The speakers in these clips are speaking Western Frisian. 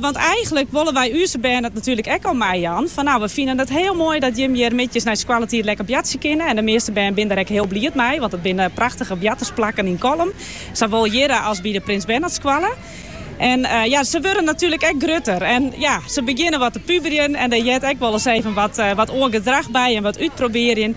Want eigenlik wolle wy úze bern it natuerlik ek al meijaan. Fan nou, we finen it hiel moai dat jimme hjir middeis nei skoalletiid lekker boartsje kinne en de measte bern binne der ek hiel bliid mei, want it binne prachtige boartersplakken yn Kollum, sawol hjir as by de Prins Bernhardskoalle. En ja, se wurde natuerlik ek grutter en ja, se begjinne wat te puberjen en dêr heart ek wolris even wat oar gedrach by en wat útprobearjen.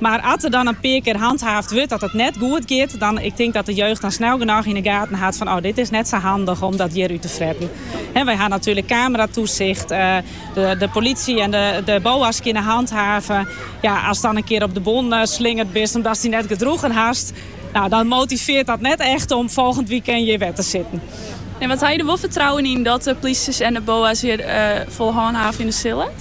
Mar as der dan in pear kear hanthaafd wurdt dat it net goed giet, dan, ik tink dat de jeugd dan snel genôch yn 'e gaten hat fan, oh, dit is net sa handich om dat hjir út te fretten. Wy ha natuerlik kameratoesicht, de polisje en de boa's kinne hanthaven. Ja, as dan in kear op de bon slingerd bist omdatst dy net gedroegen hast, nou, dan motivearret dat net echt om folgjend wykein hjir wer te sitten. En ha je der wol fertrouwen yn dat de polisje en de boa's hjir fol hânhave sille?